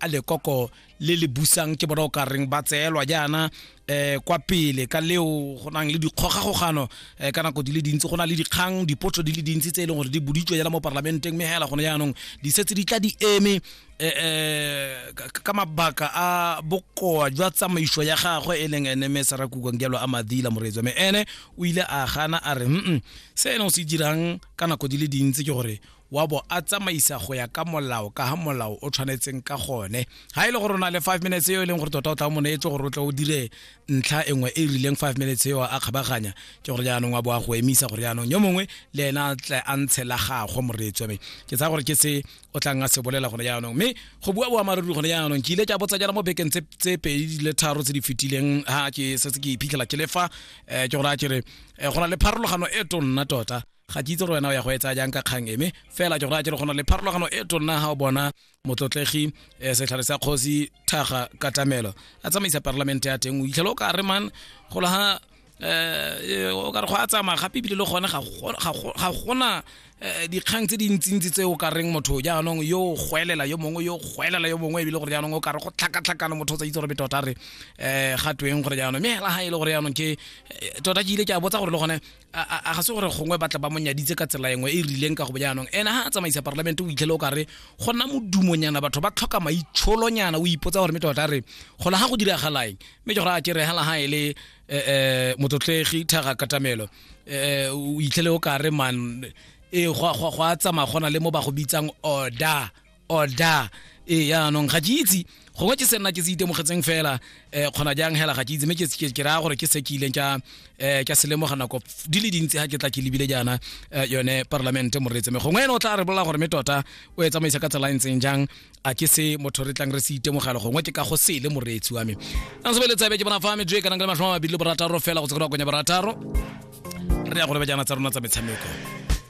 a lekoko le le busang ke bona o ka reng ba tseelwa jaana eh kwa pele ka leo go nang le dikgogagogano eh, ka nako di le dintsi go na le dikgang dipotso di le dintsi tse e leng gore di boditswe jala mo parlamenteng mme hela gone jaanong di setse di tla di eme eh, eh, ka- ka mabaka a bokoa jwa tsamaiso ya gagwe e leng ene mme sarakukwa ngelo a madila moreetswa mme ene o ile a gana a re mm se ene o se dirang ka nako di le dintsi ke gore wa bo a tsamaisa go ya ka molao ka ga molao o tshwanetseng ka gone ga e le gore o na le five minutes eo e leng gore tota o tla mo neetse gore o tle o dire ntlha e nngwe e e rileng five minutes eo a kgabaganya ke gore jaanong wa bo a go emisa gore jaanong yo mongwe le ena tle a ntshe la gagwe moreetswa me ke tsaya gore ke se o tlang a se bolela gone jaanong mme go bua boammaaruri gone jaanong ke ile ke a botsa jana mo bekeng tse pedi di le tharo tse di fetileng ga ke setse ke iphitlhela ke lefa um eh, ke gore a kere eh, go na le pharologano e tonna tota ga ke itse gore wena o ya go etsa jang ka kgang eme fela ke gore a ke re go na le pharologano e tonna ga o bona motlotlegi um setlhare sa kgosi thaga katamelo a tsamaisa parlamente ya teng o itlhele o ka re man golo ga um o ka re go a tsamaya gape ebile le gone ga gona eh, dikgang tse dintsintsi tse o ka reng motho jaanong yo goelela yo mongwe yo goelela yo mongwe ebile gore jaanong o ka re go tlhakatlhakana motho o tsa itse gore betota re um ga tweng gore jaanong mme hela ga e le gore jaanong ke tota ke ile ke a botsa gore le gone a ga se gore gongwe batla ba monyaditse ka tsela engwe e rileng ka go bojaanong ene ha a tsamaisa parlamente o itlhele o ka re go nna modumonyana batho ba tlhoka maitsholonyana o ipotsa gore mete tota re gona ga go diragalaeng mme ke gore a kere hela ha e le eh, eh, motlotlegi thaga katamelo eh, o itlhele o ka re man e go a tsamaya gona le mo ba go bitsang order order e yaanong ga ke itse gongwe ke se nna ke se itemogetseng fela um kgona jang hela ga ke itse mme ke raya gore ke se ke ileng ka um ka se lemoga nako di le dintsi ga ke tla ke lebile jaana um yone parlamente moretse me gongwe ene o tla re bolela gore me tota o e tsamaisa ka tsela e ntseng jang a ke se motho re tlang re se itemogela gongwe ke ka go sele moreetsi wa me a se beletsabe ke bona fa me joe kanang le matlhoma mabedi le borataro fela go tsekera konya borataro re ya go lebe jaana tsa rona tsa metshameko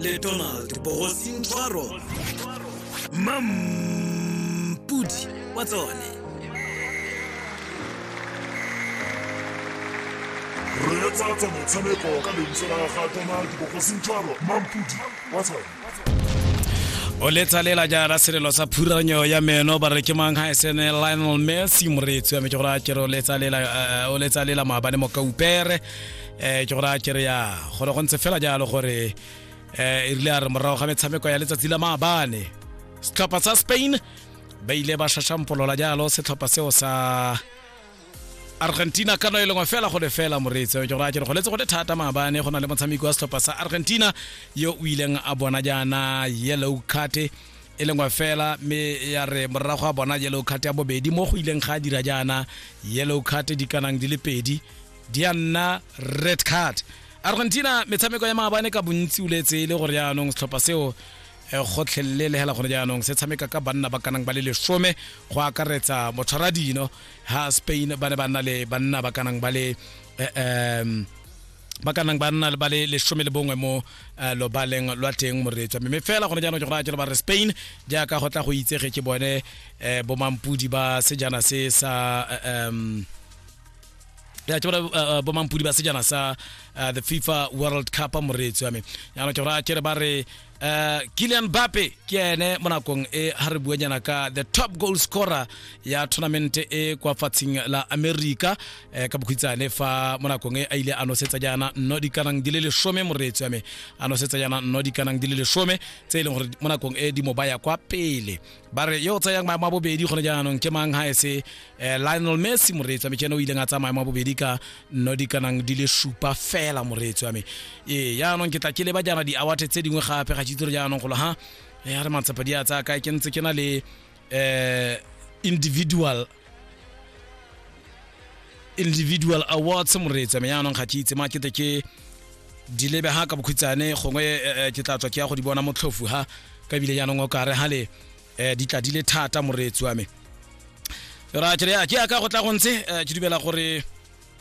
le donald bogosing tshwaro mampudi wa tsone reetsa tsa motshameko ka lentswe la ga donald bogosing tshwaro mampudi wa tsone o letsa lela jaana selelo sa phuranyo ya meno ba re ke mang ga esene lionel messi moreetsi wa me ke gore a kere o letsa lela eh, maabane mo kaupere eh ke gore a kere ya gore go ntse fela jalo gore eh e rile a re morago ga metshameko ya letsatsi la maabane setlhopha sa spain ba ile ba shashampolola jalo setlhopha seo sa argentina ka no e lengwe fela go le fela moreetsi ke gore a kere go letse go le thata maabane go na le motshameki wa setlhopha sa argentina yo o ileng a bona jaana yellow card e lengwe fela mme ya re morago a bona yellow card ya bobedi mo go ileng ga a dira jaana yellow card di kanang di le pedi di a nna red card argentina metshameko ya maabane ka bontsi o letse e le gore jaanong setlhopha seo eh, gotlhelele le hela gone jaanong se tshameka ka banna ba kanang ba le lesome go akaretsa motshwaradino ha spain ba ne ba nna le banna ba kanang ba le eh, em, ba ka nang ba nna ba le lesome le bongwe mo eh, lobaleng lwa teng moretswa mme fela gone jaanong ke go raya jalo ba re spain jaaka go tla go itsege ke bone eh, bomampodi ba sejana se sa eh, em, ya ke gore uh, bomampudi ba sejana sa uh, the fifa world cup moreetsi wa me yaanong ke gore a kere ba re uh, kilian bape ke ene mo nakong e ga re buanyana ka the top goal scorer ya tournament e kwa fatsheng la america eh, ka bokhwitsane fa mo nakong e a ile a nosetsa jaana nno dikanang di le lesome moreetsi wa me a nosetsa jaana nno dikanang di le lesome tse e leng gore mo nakong e di mo baya kwa pele ba re yo o tsayang maemo a bobedi gone jaanong ke mang ga ese um lionel messi moreetsi wa me ke ene o ileng a tsaya maemo a bobedi ka nno di kanang di le supa fela moreetsi wa me ee jaanong ke tla ke leba jaana di-awate tse dingwe gape ga tsitsore jaanong golo ga ya re matsepa di a tsaya kae ke ntse ke na le um individual individual awards moreetsa me yaanong ga ke itse ma kete ke di lebe ha ka bokhutsane gongwe eh, eh, ke tla tswa ke ya go di bona motlhofu ha ka ebile yaanong o kare ha le eh, di tla di le thata moreetsi wa me ra ke re ya ke ya ka go tla go ntse eh, ke dumela gore